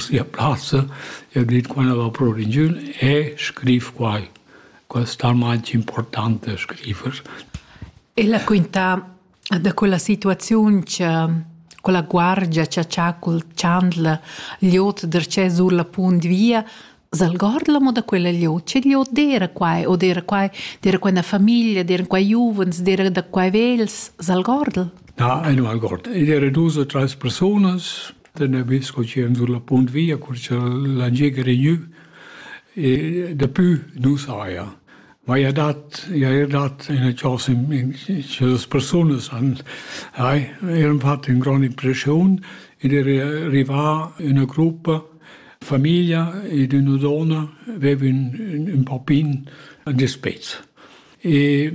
sia plazza e dit quella va pro ringiun e scriv quai. Quas talmain importante scrivers. Ella quinta da quella situaziun che quella guardia che c'ha col chandla gliot derce sur la punt via Zalgordla mo da quella gliot, ce gliot dera quai o dera quai, dera quella famiglia, dera quai giuvens, dera da quai vels, Zalgordl? Ja, einmal Gott. Ich wäre du so tres personas, Da Navins co chi ün sur la punt via, cur cha la giega regnü e dapü nu saja. Ma i ha dat i haja dat üna chosa in cha las persunas han hai eran fat ün grond impreschiun ed era rivà üna gruppa famiglia ed üna donna veva ün ün papin dispets. E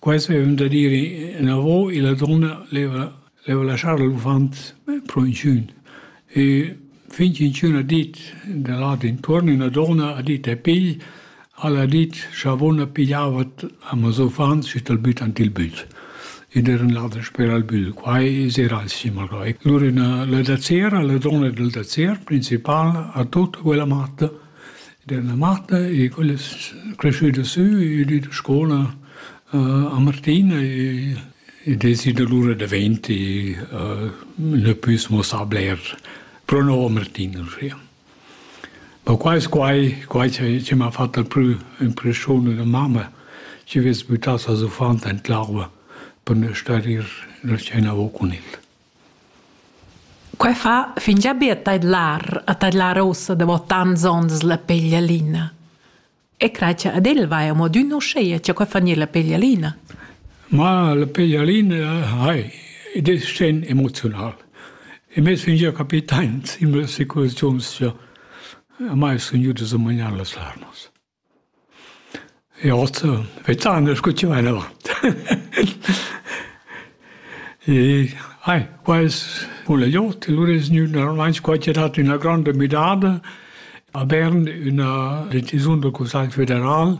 quai aveva da dire inavo e la donna leva Leva laschar l'uffant pro inchün e fin ch'inchün ha dit da là d'intuorn, üna donna ha dit e pigl, al ha dit scha vona pigliava amos uffants schi t'al büttan til bügl ed eran là dasper al bügl. Quai es eir alch malgrà. Lura üna la dazzera, la donna dal dazzer principal ha tut quella matta ed è üna matta e quella es creschüda sü, ün di da scoula a Martina e I desi dolur da venti, ne püs muossar bler pro nouvo Martinus, ja. Ma qua es quai quai chi chi m'ha fat dal prü impreschiun da mamma, chi vess büttà ses uffant aint l'arva per ne star ir la scena avo cun el. Quai fa fingià be a tadlar, a tadlar uossa davo tants ons la peglialina. E crai cha ad el vaja mo adün uscheia cha quai fa gnir la peglialina. Ma la peglialina hai, ed es sten emoziunal. E me sun gia capitains in mille situaziuns cha a mai sun jüdas a magnar las larmas. E oz, vezzan, scucciva in avant. E hai, quels vul aiot, lur es gnü normalmaing squarchierat üna granda müdada a Bern üna decisiun dal Cussagl federal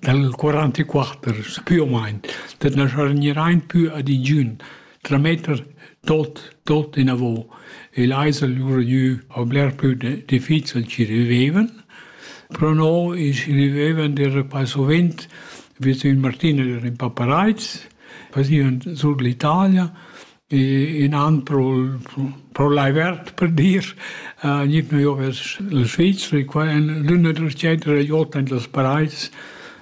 dal 44 più o meno, dat na schargnerein più ad ingiün trametter tot, tot inavo. E l'eisel lura gnü a bler plü difficil chi rivevan, però no is rivevan der passo vent vers il Martina der in Papareiz Faziun sur l'Italia e innan pro pro lai verd per dir uh, gnit mio vers la Svizra e qua in l'üna drecetera i ota in las paraids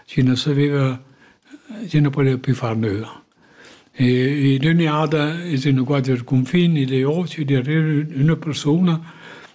chi na saveva chi na potea più far nöa. E, e d'ogni ada es in quader confin ed è oci di avere üna persuna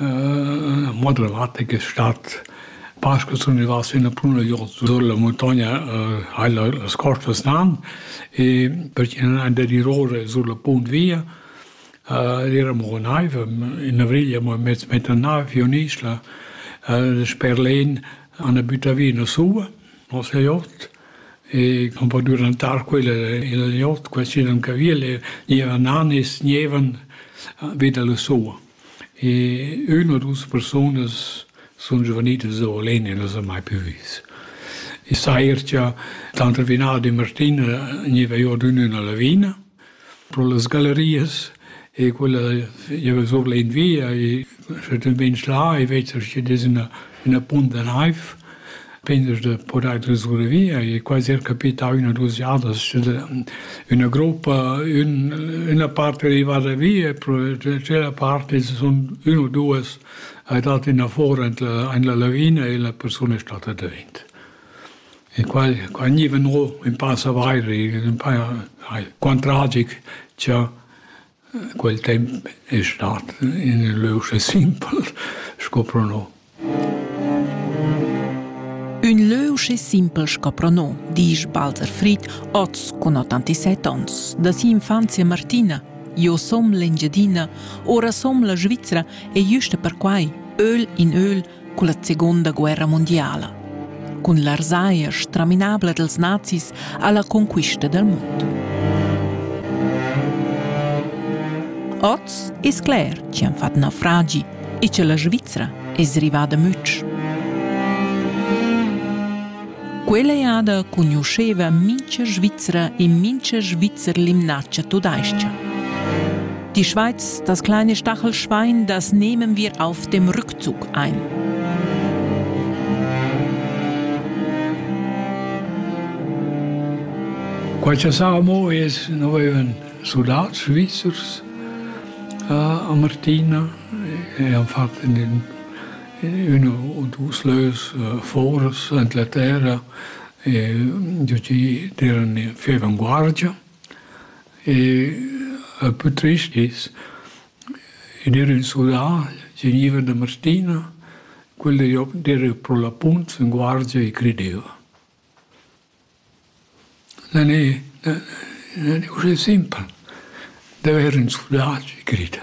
Mo dramatic es stat pas che sun rivà sin la Punagliot sur la muntogna hai las costas nan e perché ün an dadiroura sur la punt via ed eramo a naiv, in avrigl amo e mez mett a naiv giò in isla sper l'En a na büta vi üna suva, no s'la jot e cun po durantar quella illa jot, quai sin ün caviel e gniva nan e sgnevan vi da la suva. E üna u dus persunas sun giuvenilas oul en e las han mai plü vis. I sair cha tanter Vinald e Martina gneva i ordüno üna lavina pro las gallerias e quella gieva sur l'invia e schet ün beinch là e vezza schi dess üna üna punt da naiv pendas da podair trascorrer via e quasi er capità üna u duos jadas sche üna gruppa ün üna part è arrivada via e tschella part es sun ün u duos ha dat innafora in la in la lavina e la persuna è stata davent. E qua qua gniva no ün pass avair, ün pa ai, quant tragic cha Quel temp es stat ün lö uschè simpel sco pro no. Ün lö uschè simpel sco pro no, disch Walter Fried, hoz cun 87 ons, da si'infanzia martina. Jo som l'Engiadina, ora som la Svizra e güsta perquai, öl in öl, culla Seconda guerra mondiala. Cun l'arsaia straminabla dels nazis alla conquista del mondo. Oz es cler chi han fat naufragi e che la Svizzera es rivada mütsch. Quella jada conosceva mincha Svizzera e mincha Svizzer l'imnaccia tudais-cha. Die Schweiz, das kleine Stachelschwein, das nehmen wir auf dem Rücken. Zugheim. Quai cha sa amo es, no vaivan sudats svizzers a Martina e han fat in üna o dus lös foras Anglaterra e giacì d'eran in fievan guardia e pü trist es In ir in sudà tegniva üna mastina, quella d'era pro la punt in guardia e crideva. Non è, non è uschè simpel d'avair ün sudà chi grida.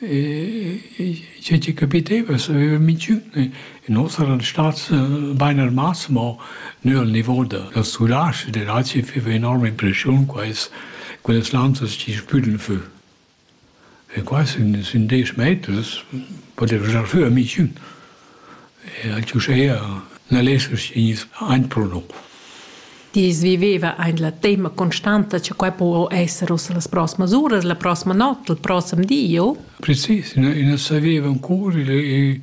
Che tgi capiteva saveva minchün e nos eran stats bain armats, ma nü al nivo dal sulage ed el aci feva enorma impressiun quais quellas lanzas chi spüdn fü. E quai sun sün desch meters, potev gnir sü a minchün. Eir uschea na lessa gnir aint pro lur. I's viveva aint la temma constanta cha quai po esser ussa las proximas uras, la proxima not, il prossem di o? Precis, i nu saveva ancura e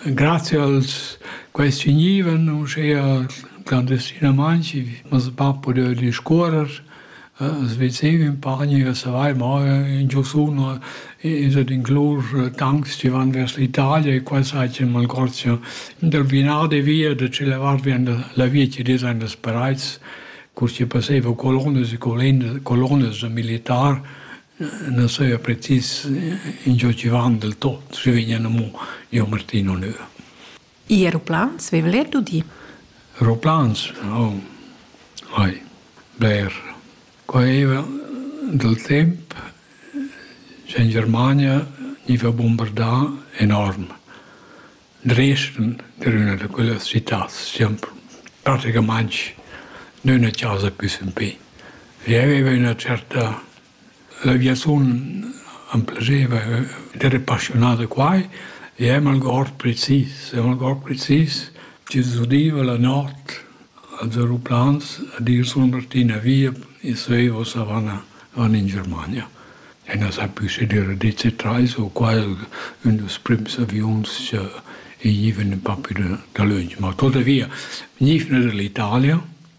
grazia als quaists vgnivan uschea clandestinamaing, ma hoz bap pudeva discuorrer As vezeiva impari a savair mo ün giursun es ed inclus tancs chi van vers l'Italia e quai saja ün malgorgia. Dal vinar de via da tschella vart vien la via chi'd es aint als Perais, cur chi passeiva colonas e colonas da militar, na saja precis ingio chi van del tot, schi vegnan amo giò Martin Onur. I aeroplans veva l'er d'udir. Aeroplans? Oh, ai, bler. Quai era dal temp che in Germania gniva bombardà enorm. Dresden era üna da quellas citats, siam praticamaing d'üna chasa pü sempè. Vi aveva üna certa Ia sun am plazeva d'ere passiunà da quai e amo algord precis, amo algord precis. Tü t'es udiva la not als aeroplans a dir sun partì via e söiva ussa van in Germania. E na s'ha pü sü dür a dir che trais u quai ün dals prüms aviuns cha i gniva ün pa pü dalöntsch. Ma tuotavia, gniva da l'Italia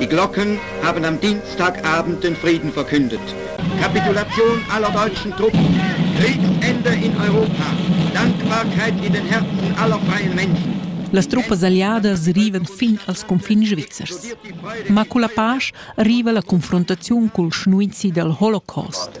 Die Glocken haben am Dienstagabend den Frieden verkündet. Kapitulation aller deutschen Truppen, Kriegsende in Europa, Dankbarkeit in den Herzen aller freien Menschen. Las truppas alliadas rivan fin als confins svizzers. Ma con la pace arriva la confrontazione col schnuizi dal Holocaust.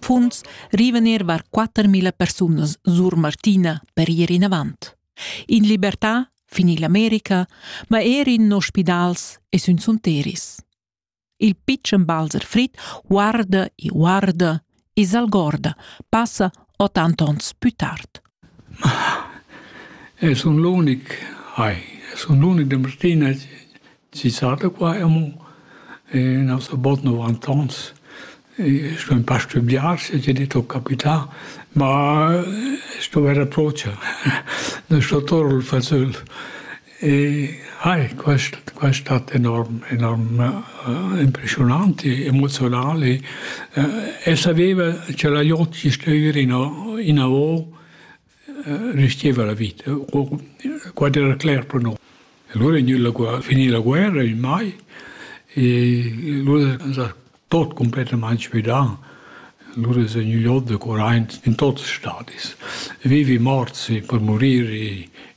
Punts rivener var 4000 persunas sur Martina per ir inavant. In libertà fin ill'America, ma er in ospidals e sün sunteris. Il pitschen Balzer Frit guarda e guarda e s'algorda, passa 80 ons più tard. E sun l'unic, ai, sun l'unic da Martina chi sa da qua amo. E no so bod novant ons. E sto ün pa stübgiar se ti dit ho capità, ma sto vaire procha. Da sto tour il fazöl. Hai, quest quest hat enorm enorm impressionant, emozional e e saveva cha la gl'ot chi stüva ino inavo resteva la vita, quai era cler pro no. Alura è gnü la finì la guerra in mai e lura s'ha tot cumplettamain svidà. Lur es gnü god da curaint in tuots stadis. Vivi morts per murir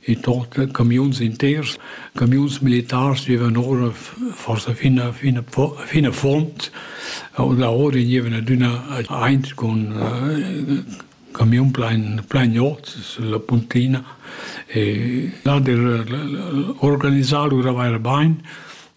in tot, camiuns inters, camiuns militars vivan ora forsa fin a, fin a, fin a fond. Là ora gnivan adüna aint cun camiun plain, plain ot sulla puntina. E là der organisà lura vaira bain.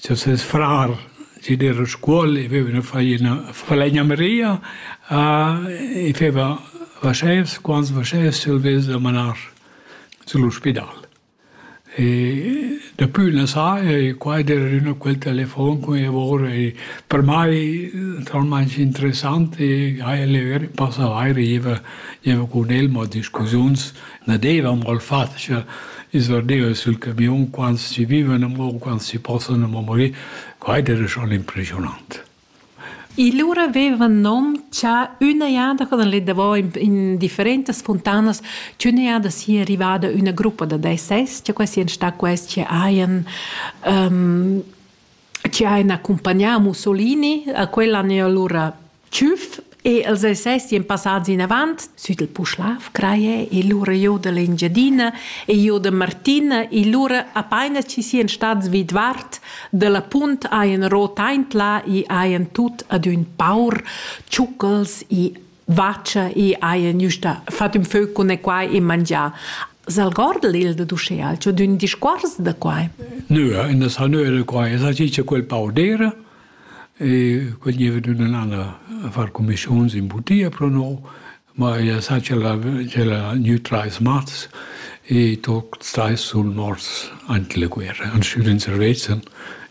Cha ses frar sid era a Scuol e veveva fai üna falegnameria a e feva vaschès, quants vaschès ch'el vess da manar süll'ospidal. E dapü la sa e qua ed era adüna quel telefon cun i avor e per mai naturalmaing interessant e ha el eir passà vaire, gieva gieva cun el mo a discussiuns Na deva amò il fat cha ins verdeva sul camiun quants chi vivan amò, quants chi possan amò morir. Quai era schon impressionant. E lura aveva in nom cha üna jada, quando l'he davò in, in differentas funtanas, ch'üna jada sia rivada üna gruppa da DSS, cha quai sian sta quels chi hajan um, chi hain accumpagnà Mussolini a quel an eir lura tschüf e els essesien passats inavant süt il Puschlav craie e lura jo da l'Engiadina e jo da Martina e lura apaina chi sien stats vidvart da la punt haien rot aint là e haien tut ad ün paur tschucchels e vacha i haja gnüsta fat ün fö cun e quai e mangià. S'algordel il da d'uschea, c'ho d'ün discuors da quai? Nö, in das ha nö da quai. Es aci cha quel pau d'eira e quel gieva d'ün an a far comischuns in butia pro no, ma ella sa cha l'ha gnü trais mats e tuots trais sun morts ant la guerra, an stüd in servezzan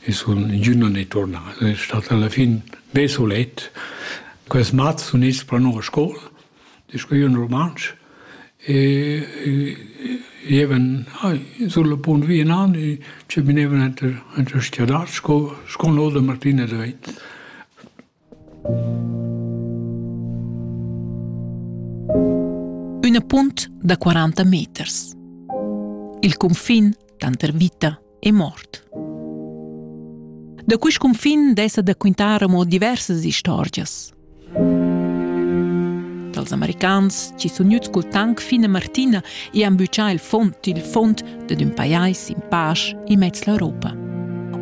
e sun ingüna ne turnà. Ed è stat alla fin be sulet. Quels mats sun its pro noua scoul, discuiun rumantsch e gievan sul punt vi enan e cheminevan enter stiadat sco sco no da Martina da Veit. Üna punt da 40 meters. Il cunfin tanter vita è mort. Da quest cunfin dessa da quintar amo diversas istorgias. Dals americans ci sun juts col tank fine Martina e han büchà il font, il font dad ün pajais in pasch in mezz l'Europa.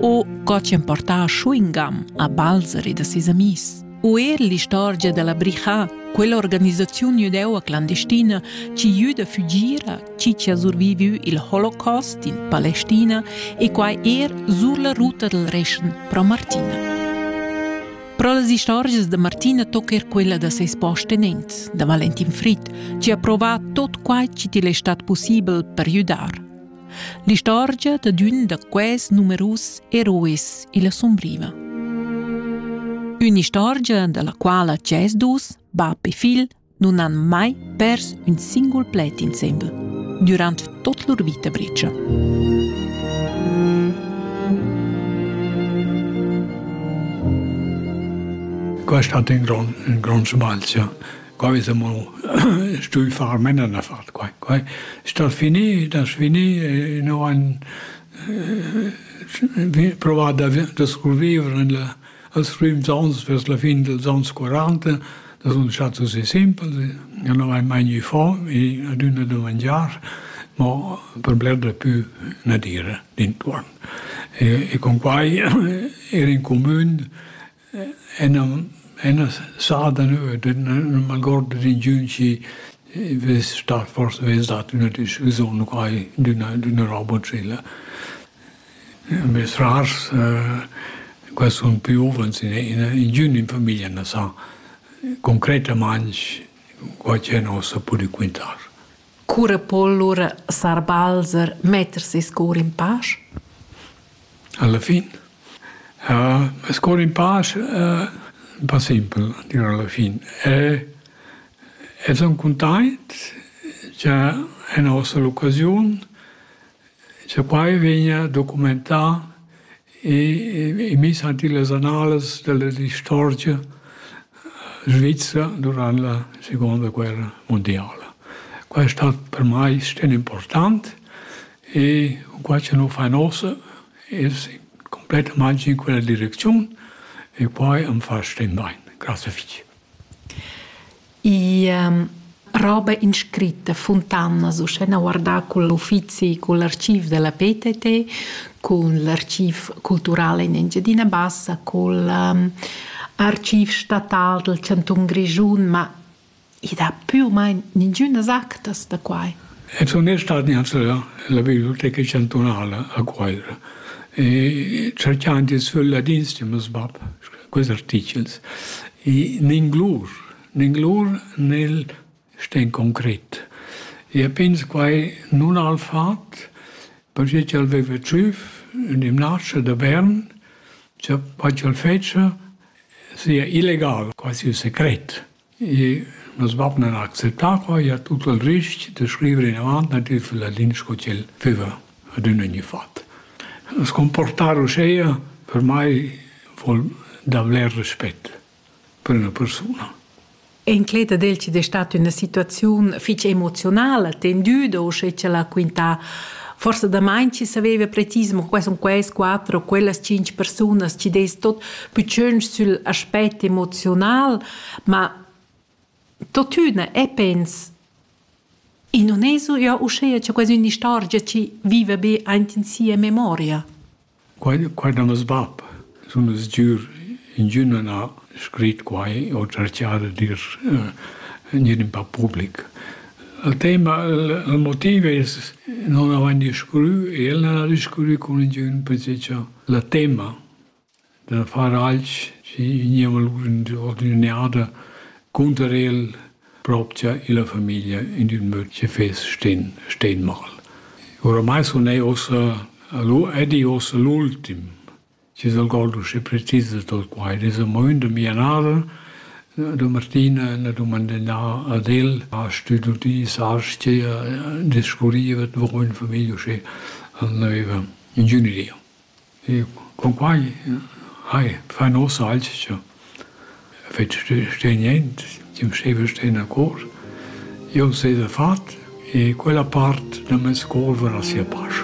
O co ci han portà a chewing-gum a Balzer e da ses amis. u er l'istorgia da la bricha, quell'organisaziun judeu clandestina chi jüda fügira chi chi ha survivü il holocaust in Palestina e quai er sur la ruta dal Reschen pro Martina. Pro las istorgias da Martina tocca er quella da ses postenents, da Valentin Fried, chi ha provà tot quai chi til è stat possibel per judar. L'istorgia da d'ün da quests numerus herois illa sumbriva. Ün'istorgia da la quala tschess dus, bap e figl, nun han mai pers ün singul pled insembel durant tot lur vita bricia. Questo ha un grande, un grande sbagl. quai es amo stui far mena davart quai. Quai stal finir, das finir e no han provat da, da survivere in la, als prims ans, vers la fin dels ans 40, das sun stat così simpel, ja no hai mai gnü fo, e adüna da mangiar, ma per bler da pü na dire d'intuorn. E, e con quai era in comün Ena sada neu ed nu m'algord d'ingiün chi vess stat fors vess dat üna discussiun u quai d'üna d'üna roba tschella. Mez rars qua sun piuvens ingün in famiglia na sa concretamaing quai chi a nossa pudü quintar. Cura po lura sar Balzer metter ses cor in pasch? Alla fin? Uh, meis cor in pasch uh, un po simpel, dir alla fin. E, e son content che en nossa occasione Cha quai vegna documentà e miss ant illas annalas della istorgia svizra durant la segonda guerra mundiala. Quai è stat per mai sten important e cunquai cha nu fain uossa es cumplettamaing in quella direcziun e quai am fa sten bain. Grazie fich. I roba inscritta Funtanas, uschè guardà cul uffizi cul archiv da la PTT, cun l'archiv cultural in Engiadina Bassa, cul archiv statal dal chantun Grischun, ma i dà pü u main ningünas actas da quai. E sun io stat gnanc la biblioteca chantunala a Cuaira e cerchand il sül ladin, stim, sbab, quels artichels. E ninglur, ninglur nel sten concret. E pens quai nun al fat, perché ch'el veva tschüf in gimnasio da Bern, cha quai ch'el fetscha sia illegal, quasi un secret. I nus vain acceptà qua i a tut il rich da scrivere inavant natürel la lingua sco ch'el füva adüna gnüfat. Scumportar uscheia per mai voul davler respet per üna persuna. Inclet ad el chi'd es stat üna situaziun fich emozionala, tendüda, uschè cha l'ha quintà forsa damain chi saveva precis mo quai sun quels quatter o quellas tschinch persunas chi'd es tot pü tschönch sül aspect emoziunal. Ma tuottüna e pens i nun es eau uschea cha quai es ün'istorgia chi viva be aint in sia memoria. Quai quai da meis bap. Sun es giür ingün a n'ha scrit quai o cerchà da dir gnir ün pa public. Il tema, il motiv es non avain discurrü e el n'ha discurrü cun ingün perche cha il tema da far alch schi gniva lur ordinada cunter el propcha illa famiglia in ün möd chi fess sten sten mal. Oramai sun eir uossa ed i uossa l'ultim chi s'al god usché precis dal quai. Ed es amo ün da mia nada, da Martina, ün ha dumandà ad el, ha stüdü sascha, discurriva davo ün famiglia usché al növa, ingünüria. E cun quai hai fa nossa alch cha fetsch sta niente, chi'm staiva sten a cor. Jau s'haja fat e quella part da meis cour varà sia pasch.